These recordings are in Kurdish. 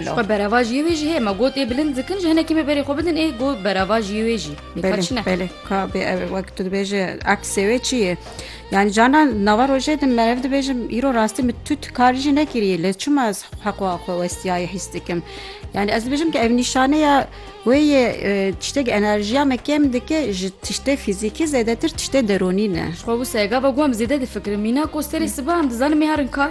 Ji xwe berava jiyê wê jî heye me got ê bilind dikin ji hinekî me berê xwe bidin ê got berava jiyê wê jî belê kabê ev wek tu dibêje aksê wê çi ye yani canan nava rojê din me ev dibêjim îro rastî min tu karî jî nekiriye lê çima ez heqwa xwe westiyayê hîs dikim yani ez dibêjim ki ev nîşaneya wê yê tiştek enerjiya me kêm dike ji tiştê fîzîkî zêdetir tiştê deronî ne xwe wisa gava guhem zêde difikirim mîna kosterê siba em dizanim mêharin kar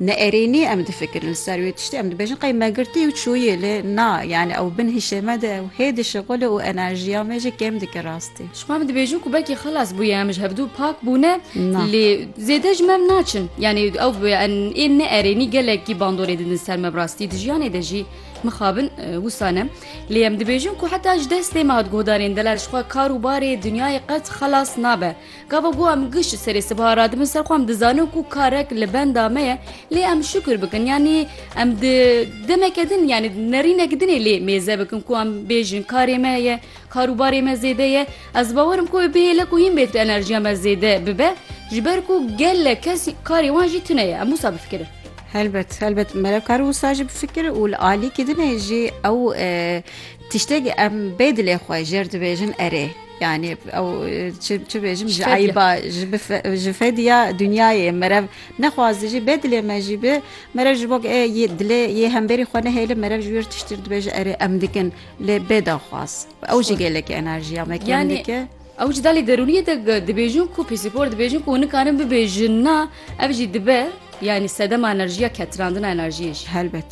Ne erênî em difikirin li ser wê tiştê, em dibêjin qey me girtiye û çûye lê na yanî ew bin hişê me de ew hê dişixule û enerjiya me jî kêm dike rastî. Ji xwe em dibêjin ku belkî xilas bûye em ji hevdu pak bûne lê zêde ji me em naçin yanî ew ên ne erênî gelekî bandorê didin ser me bi rastî di jiyanê de jî mixabin wisa ne lê em dibêjin ku heta ji destê me hat guhdarên delal ji xwe kar û barê dinyayê qet xelas nabe. Gava ku em gişt serê sibha radibin ser xwe em dizanin ku karek li benda me ye lê em şukir bikin yanî em di demeke din yanî nerînek dinê lê mêze bikin ku em bêjin karê me ye karûbarê me zêde ye ez bawerim ku bihêle ku hîn bê tu enerjiya me zêde bibe ji ber ku gelek kes karê wan jî tune ye em wisa bifikirin. Helbet helbet merevkar wisa jî bifikir û li alîkî dinê jî ew tiştekî em bê dilê xwe jêr dibêjin erê. Yani ew çi çi bêjim ji eyba ji fediya dunyayê merev nexwazdi jî bê dilê me jî bi merev ji bok ê dilê yê hemberî xwe nehêli merev ji wîr tiştir dibêje erê em dikin lê bê daxwaz ew jî gelekî enerjiya me yani ew ji dalê derûniyê de dibêjin ku pîsîkor dibêjin ku nikarin bibêjin na Ev jî dibe yanî sedema enerjiya ketirandina enerjiyê jî. Helbet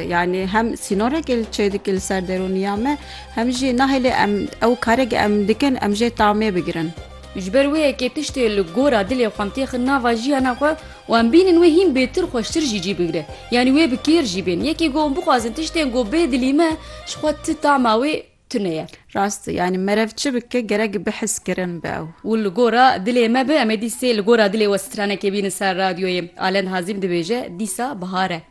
yanî hem sînorekê li çê dike li ser derûniya me hem jî nahêlê em ew karekê em dikin em jê tamê bigirin. Ji ber wê yekê tiştê li gora dilê xwe em têxin nava jiyana xwe û em bînin wê hîn bêtir xweştir jî cî bigire yanî wê bi kêr jî bên. Yekê ku em bixwazin tiştên ku bê dilî me ji xwe ti tama wê, tune ye. Rast e, yanî merev çi bike gerek bihizkirin be ew. Û li gora dilê me be em ê dîsê li gora dilê we stranekê bînin ser radyoyê. Alend Hazîm dibêje, Dîsa bihar e.